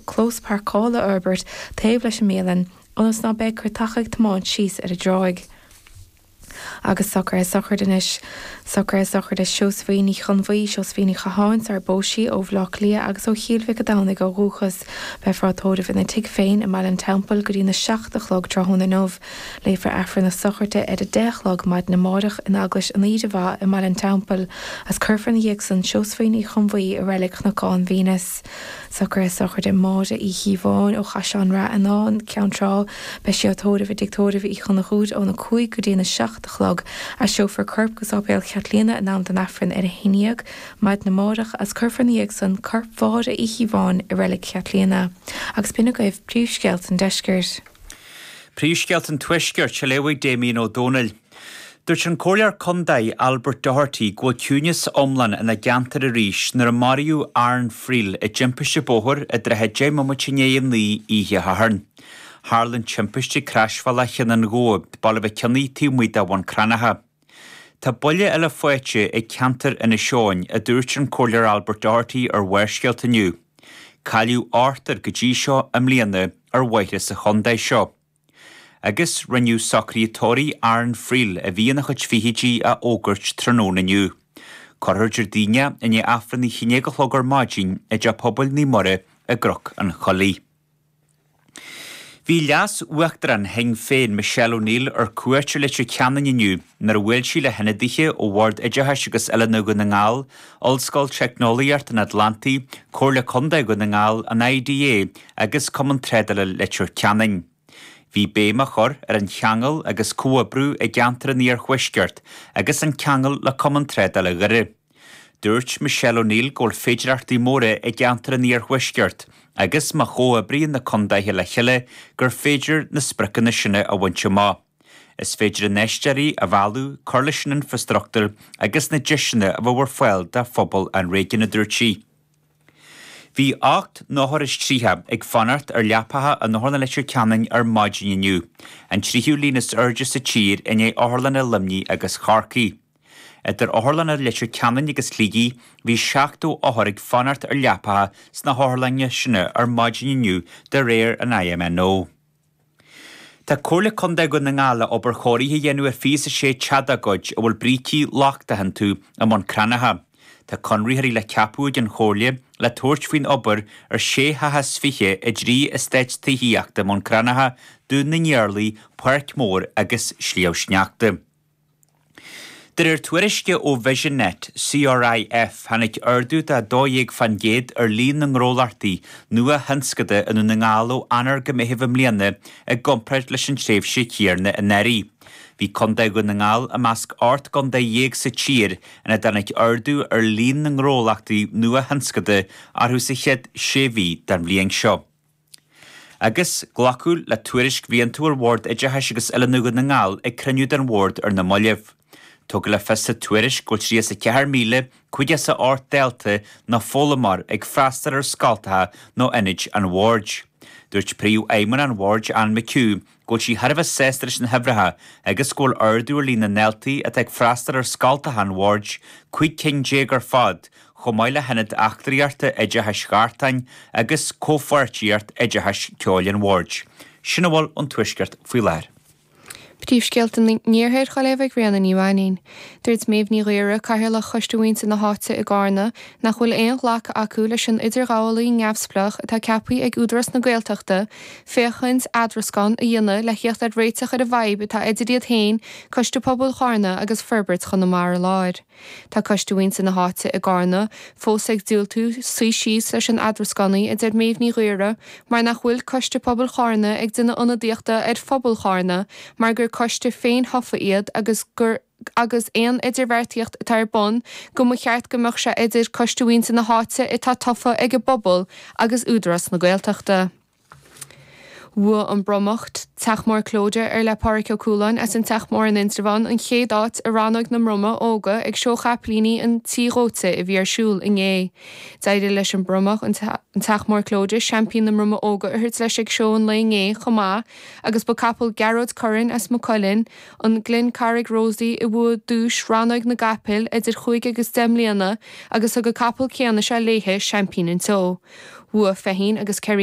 clós pairceála a fhorbairt taobh leis an mbialann ionas ná beidh cairteacha ag tiomáint síos ar an dtráigh. Agus socruithe sochraide anois. Socruithe sochraide Seosaimhín Uí Chonbhuí, Seosaimhín Ní Chatháin, sarar phós sí, ó Bhleá Cliath agus ó Chill Mhic a' Domhnaigh ó dhúchas. Beifear á tóireamh ina tigh féin i mBaile an Teampaill go dtí'n a seacht a chlog tráthnóna inniu. Léifear Aifreann na sochraide ar a deich a chlog maidin amáireach in Eaglais an Aoire Mhaith i mBaile an Teampaill, as cuirfear ina dhiaidh san Seosaimhín Uí Chonbhuí i Reilig Chnocán Veineas. Socruithe sochraide Mháire Uí Chíobháin ó Chathair an Ráth Fhionáin, Ceann Trá, Beidh sí á tórramh i dTig Tórraimh Uí Chonchúir óna cúig go dtí an 7 a chlog. Aistreofar a corp go Sáipéal Cheathlíana in am don Aifreann ar a haon dhéag maidin amáireach agus cuirfear ina dhiaidh san corp Mháire Uí Chíobháin i Reilig Cheathlíana. Agus b'in agaibh príomhscéalta an Deiscirt. Príomhscéalta an Tuaiscirt, is á léamh Damien Ó Dónaill. Dúirt an Comhairleoir Contae Albert Doherty go bhfuil ciúineas iomlán ina gceantar, áit ar maraíodh Aaron Friel i dtimpiste bóthair i dtrátha 10 mbomaite i ndiaidh a 9 oíche Shathairn. Tharla an timpiste ag Croisbhealach Chionn an Ghabhail, Baile Mhic Cionnaith taobh amuigh de Bhun Cranncha. Tá buille eile faighte ag ceantar Inis Eoghain, a dúirt an Comhairleoir Albert Doherty ar Bharrscéalta inniu. Cailleadh ochtar go dtí seo i mbliana ar bhóithre sa chontae seo. Agus rinneadh socruithe tórraimh Aaron Friel, a bhí ina chuid fichidí, a fhógairt tráthnóna inniu. Cuirfear é Déardaoin i ndiaidh Aifreann a haon déag a chlog ar maidin i dTeach Pobail Naomh Muire i gCnoc an Choiligh. Bhí Leas-Uachtarán Shinn Féin, Michelle O'Neill, ar cuairt i Leitir Ceanainn inniu, nuair a bhuail sí le hionadaithe ó Bhord Oideachais agus Oiliúna Dhún na nGall, Ollscoil Teicneolaíocht an Atlantaigh, Comhairle Contae Dhún na nGall, an IDA, agus Cumann Trádála Leitir Ceanainn. Bhí béim á chur ar an cheangal agus comhoibriú i gceantar an Iarthuaiscirt agus an ceangal le Cumann Trádála Dhoire. Dúirt Michelle O'Neill go bhfuil féidearthachtaí móra i gceantar an Iarthuaiscirt agus má chomhoibríonn na contaetha le chéile gur féidir na spriocanna sin a bhaint amach. Is féidir infheisteoirí a mhealladh, cur leis an infrastruchtúr agus na deiseanna a chur ar fáil do phobal an réigiúin, a dúirt sí. Bhí ocht n-othar is tríocha ag fanacht ar leapacha in Otharlann Leitir Ceanainn ar maidin inniu, an tríú líon is airde sa tír i ndiaidh otharlanna Luimnigh agus Chorcaí. Idir otharlanna Leitir Ceanainn agus Shligigh, bhí 70 othar ag fanacht ar leapacha sna hotharlanna sin ar maidin inniu de réir an INMO. Tá Comhairle Contae Dhún na nGall le obair chóirithe a dhéanamh ar thithe sóisialta dá gcuid a bhfuil brící lochtacha iontu i mBun Cranncha. Tá conraitheoirí le ceapadh ag an Chomhairle le tabhairt faoin obair ar sé theach as fiche i dtrí estáit tithíochta i mBun Cranncha, Dún na nIarlaí, Páirc Mhór agus Sliabh Sneachta. De réir tuairisce ó Vision Net, CRIF, tháinig ardú de 12 fan gcéad ar líon na ngnólachtaí nuathionscanta i nDún na nGall ó Eanáir go Meitheamh i mbliana i gcomparáid leis an tréimhse chéanna anuraidh. Bhí Contae Dhún na nGall i measc ocht gcontae déag sa tír ina dtáinig ardú ar líon na ngnólachtaí nuathionscanta orthu sa chéad sé mhí den bhliain seo. agus glacadh le tuairisc bhliantúil Bhord Oideachais agus Oiliúna Dhún na nGall ag cruinniú den Bhord ar na mallaibh. Tugadh le fios sa tuairisc go bhfuil 34,508 dalta nó foghlaimeoir ag freastal ar scoilteacha nó ionaid an Bhoird. Dúirt Príomhfheidhmeannach an Bhoird, Anne McHugh, go bhfuil sí thar a bheith sásta leis na huimhreacha agus go bhfuil ardú ar líon na ndaltaí atá ag freastal ar scoilteacha an Bhoird, 15 cinn ar fad, chomh maith le hIonad Eachtraíochta Oideachais Ghartáin agus Comhpháirtíocht Oideachais Ceoil an Bhoird. Sin a bhfuil ón Tuaisceart faoi láthair. Príomhscéalta an Iarthair ar ball ag Ríona Ní Mhainnín. Dúirt Méabh Ní Ghaora, Cathaoirleach Choiste Mhuintir na hÁite i gCarna, nach bhfuil aon ghlacadh acu leis an idirghabhálaí neamhspleách atá ceapthaí ag Údarás na Gaeltachta féachaint le eadrascán a dhéanamh le theacht ar réiteach ar an bhfadhb atá idir iad féin, Coiste Pobail Charna agus Forbairt Chonamara Láir. Tá Coiste Mhuintir na hÁite i gCarna fós ag diúltú suí síos leis an eadrascánaí, a deir Méabh Ní Ghaora, mar nach bhfuil Coiste Pobail Charna ag déanamh ionadaíochta ar phobal Charna mar gur coiste féin-thofa iad agus gur agus aon idirbheartaíocht atá ar bun go mba cheart go mbeadh sé idir Coiste Mhuintir na hÁite atá tofa ag an bpobal agus Údarás na Gaeltachta. Bhuaigh an bromach, Teach Mór Clóide ar le Pádhraic Ó Cualáin as an Teach Mór in Indreabhán, an chéad áit i rannóg na mbromach óga ag Seó Chaipilíní an Tí Dhóite a bhí ar siúl inné. D'éirigh leis an mbromach, an Teach Mór Clóide, Seaimpín na mBromach Óga a thabhairt leis ag seó an lae inné chomh maith, agus ba capall Ghearóid Curran as Maigh Cuilinn, an Glencarrig Rosie, a bhuaigh duais Rannóig na gCapall idir chúig agus deich mbliana agus thug an capall céanna seo léi seaimpín an tseó. Bhuaigh Feichín agus Kerry.